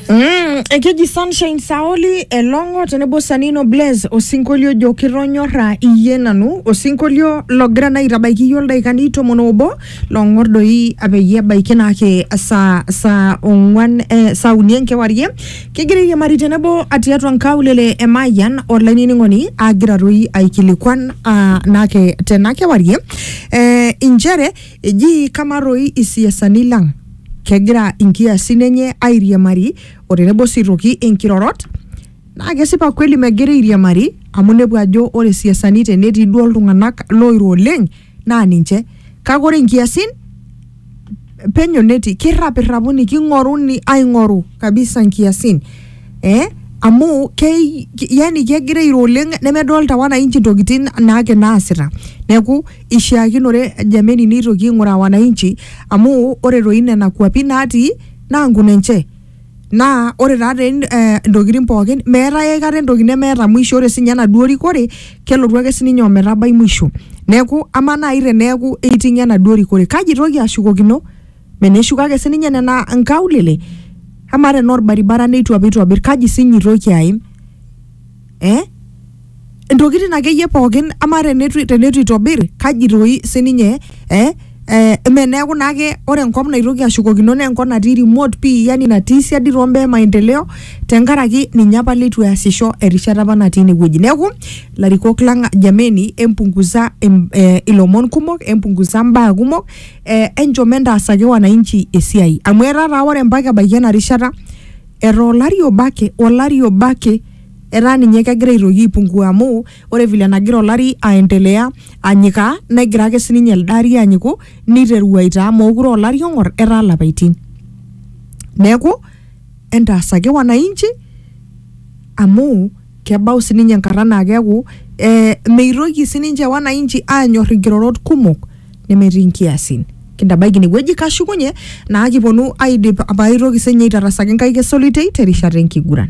Mm, ekeji Sunshine Saoli Elong'o tenebo Sanino Blaze osinkolio ojo kitonyorra iyie nanu osinkolio logira naa aitabaiki iyie oldaikani tomon obo long'or doi peyie ebaiki naake saa saa ong'wan eh, saa uni enkewarie kigira airiamari tenebo tiatua nkaulele e Mayian olainining'oni agira toi aikilikuan ah, naake tena kewarie eh, inchere Eji kamaa doi isiasani lang kegira inkiasin enye airiamari o tenebo sii aitoki inkirorot? Naa kesipa kweli megira airiamari amu inepu ajo ore isiasani tenetii duo iltung'anak looiro oleng naa ninche kake ore inkiasin penyo netii kirrapirrapuni king'oruni aing'oru kabisa inkiasin eh amu kei yani kegira airo oleng nemedolta wananchi intokitin naake naasita neeku. Ishiakinore Jameni neitoki aing'uraa wananchi amu ore toi nena kuapi natii naa nkun enche. Naa ore taa te eh, ntokitin pookin meetae aikata entoki nemeeta mwisho ore sinye enaduo rikore kelotu ake sininye ometabai mwisho. Neeku amaa nai teneeku eiting'o enaduo rikore kaji itoki ashukokino? Mene eshuko ake sininye nena nkaulele? Amaa tenaa orbaribara neitu apa itobir kaji sinye itoki aim? eh? ntokitin akeyie pookin ama tenetu tenetu itobir kaji toi sininye eh? Eh, eme neeku naake ore enkop naitoki ashukokino naa enkop natii remote pii yani natii siadi too mbaa e maendeleo tenkaraki ninye apa leitu easisho erishata apa natii inewueji neeku larikok lang jameni empunguza em, eh, ilomon kumok empunguza mbaa kumok eh, enchom entaasaki wananchi esiai amu etaa taa ore mpaka ebaiki ena rishata Etaa olari obo ake, olari obo ake etaa ninye kegira aitoki aipungua amu ore vile nagira olari aendelea anyikaa negira ake sininye elde ari anyiku niteru aitaa mookure aa olari ong'or etaa ilapaitin. Neeku entaasaki wananchi amu Kebau sininye enkata naa keeku eh, meitoki sininche wananchi aanyor inkirorot kumok nemetii nkiasin. Kintabaiki inewueji kashukunye naa kiponu aidip paaitoki sinye aitarasaki nkaik esolitei terishata enkiguran.